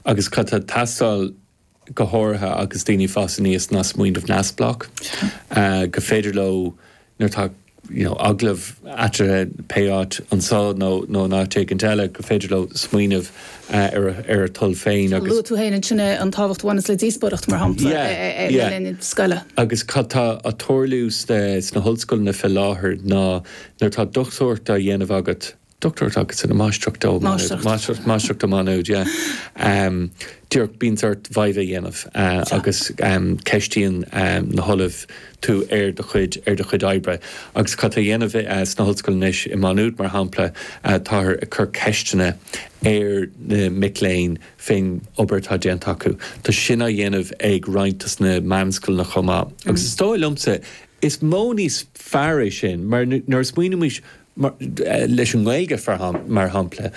Agus cad tá ag teastáil go háirithe agus daoine fásta anois ná smaoineamh neamhspleách gur féidir leo, nuair atá you know agallamh eatarthu pé áit, anseo nó in áit éigin eile, gur féidir leo smaoineamh ar a dtoil féin agus. Luaigh tú féin ansin é, an tábhacht a bhaineas le díospóireacht, mar shampla, yeah, yeah. le linn scoile. Agus cad tá á tarlú sna hollscoileanna fé láthair ná nuair atá dochtúireacht á dhéanamh agat, Dochtúireacht agus an mháistreacht, ó, máistreacht. Máistreacht, máistreacht do Má Nuad, yeah. Um, díreach, bíonn sórt viva á dhéanamh uh, Sure. agus um, ceistíonn um, na hollaimh tú ar do chuid, ar do chuid oibre. Agus cad atá á dhéanamh uh, san ollscoil anois i Má Nuad, mar shampla, uh, táthar ag cur ceisteanna ar na mic léinn fén obair atá déanta acu. Tá sin á dhéanamh ag roinnt as na meanscoileanna chomh maith. Agus mm. is dóigh liomsa, is modh níos fearr é sin, mar nuair a smaoinimid mar, leis an nGaeilge mar shampla,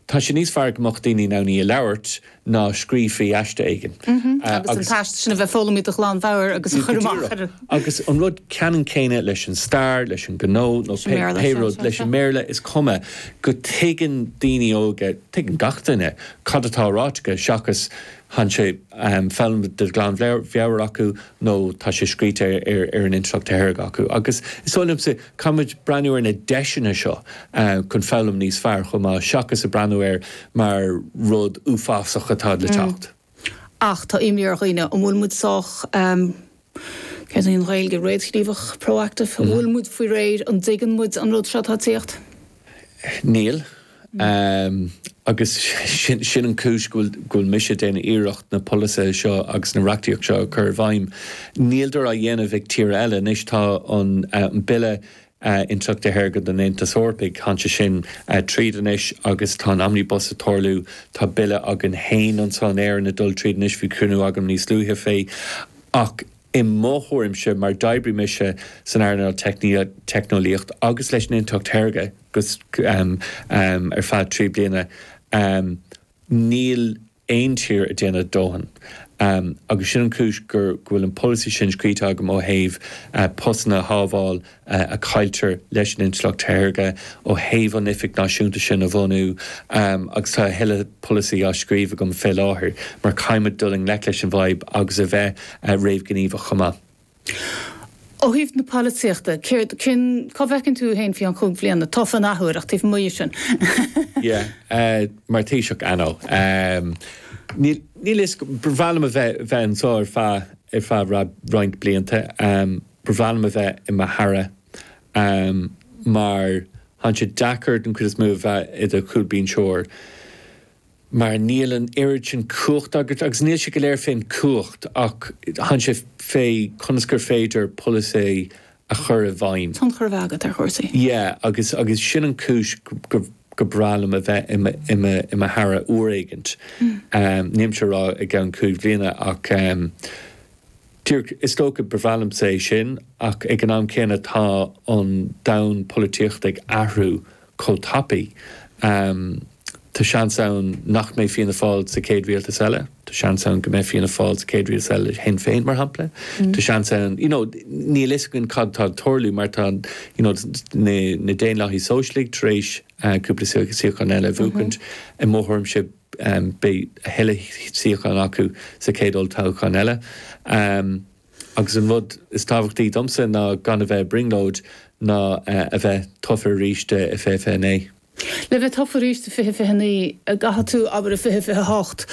tá sé níos fearr go mbeadh daoine in ann í a labhairt ná scríobh faoi aiste éigin. Agus an t-aiste sin a bheith foghlamtha de ghlan mheabhair agus a chur amach ar. Agus an rud ceannann céanna leis an stair, leis an ngnó nó pé rud, leis an mBéarla, is cuma go dtuigeann daoine óga, tuigeann gach duine, cad atá ráite acu seachas go bhfuil sé foghlamtha de ghlan mheabhair acu nó tá sé scríte ar an intleacht shaorga acu, agus is dóigh liomsa, caithfimid breathnú ar na deiseanna seo chun foghlaim níos fearr chomh maith, seachas ag breathnú air mar rud uafásach atá le teacht. Ach tá imní ar dhaoine, an bhfuil muid sách, céard é an Ghaeilge, réamhghníomhach, proactive? An bhfuil muid faoi réir, an dtuigeann muid an rud seo atá ag tíocht? Níl. Agus sin an chúis go bhfuil mise ag déanamh iarracht na polasaithe seo agus an reachtaíocht seo a chur i bhfeidhm. Níl sé á dhéanamh ag tíortha eile. Anois tá an Bille Intleachta Shaorga don Aontas Eorpach, tháinig sé sin tríd anois agus tá an Omnibus ag tarlú. Tá Bille againn féin anseo in Éirinn ag dul tríd anois, bhí cruinniú agam níos luaithe fé. Ach. I mo thuairimse, mar d'oibrigh mise san earnáil teicneolaíocht agus leis an intleacht shaorga ar feadh trí bliana, níl aon tír ag déanamh a dóthain. Agus sin an chúis go bhfuil an polasaí sin scríte agam ó thaobh postanna a shábháil a chailltear leis an intleacht shaorga ó thaobh an Oifig Náisiúnta sin a bhunú agus tá a thuilleadh polasaí á scríobh agam fé láthair mar caithfidh muid dul i ngleic leis an bhfadhb agus a bheith réamhghníomhach chomh maith. Ó thaobh na polaitíochta, céard, cén, cá bhfeiceann tú thú fhéin faoi cheann chúig bliana tofa an athuair ach taobh amuigh dhe sin? Yeah, mar Thaoiseach, I know. Níl, níl a fhios agam, ba mhaith liom a bheith, bheith anseo ar feadh, ar feadh roinnt blianta. ba bhreá liom a bheith i mo Aire mar tá'n sé deacair den chuid is mó a bheith i do chúlbínseoir mar níl an oiread sin cumhacht agat agus níl sé go léir fén gcumhacht ach tá'n sé fé conas gur féidir polasaí a chur i bhfeidhm. tionchar a bheith agat ar chúrsaí. Yeah agus agus sin an chúis gur bhreá liom a bheith i mo Aire uair éigint, nílimse ag rá i gceann cúig bhliana ach. Dtír, is dócha, ba bhreá liomsa é sin, ach ag an am céanna tá an domhan polaitíochta ag athrú chomh tapaidh, tá seans ann nach mbeidh Fianna Fáil sa chéad rialtas eile, tá seans ann go mbeidh Fianna Fáil sa chéad rialtas eile le Sinn Féin, mar shampla, tá seans ann, you know, níl a fhios againn cad atá ag tarlú mar tá, you know, na Daonlathaigh Shóisialta tar éis cúpla suíochán eile a bhuachaint, i mo thuairimse, Beidh a thuilleadh suíochán acu sa chéad olltoghchán eile. Agus an rud is tábhachtaí domsa ná gan a bheith ag brionglóid ná a bheith tofa arís i 2029. Le bheith tofa arís i 2029, caithfidh tú, abair, i 2028,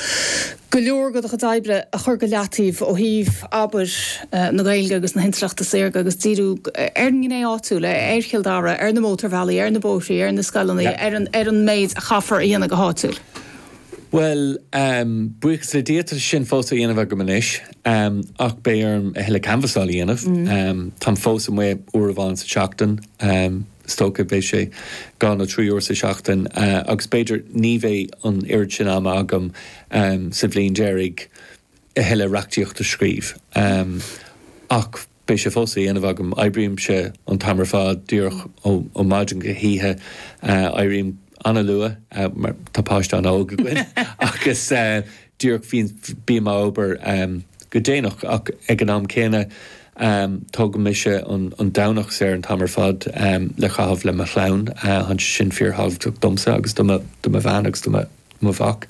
go leor de do chuid oibre a chur go leataobh ó thaobh, abair, na Gaeilge agus na hintleachta saorga agus díriú ar an ngné áitiúil, ar Chill Dara, ar na mótarbhealaí, ar na bóithre, ar na scoileanna, ar an méid a chaithfear a dhéanamh go háitiúil. Bhuel, buíochas le Dia, tá sin fós á dhéanamh agam anois, ach beidh orm a thuilleadh canbhasála a dhéanamh. Táim fós amuigh uair amháin sa tseachtain, is dócha, beidh sé dhá nó trí uair sa tseachtain, agus b'fhéidir ní bheidh an oiread sin ama agam sa bhliain deiridh, a thuilleadh reachtaíocht a scríobh. Ach beidh sé fós á dhéanamh agam. Oibrímse an t-am ar fad, díreach ó mhaidin go hoíche. Éirím an-luath mar tá páiste an-óg againn agus díreach bím ag obair go déanach. Ach ag an am céanna, tógann mise an Domhnach saor an t-am ar fad le caitheamh le mo chlann. Tá sé sin fíorthábhachtach domsa agus do mo bhean agus do mo mhac.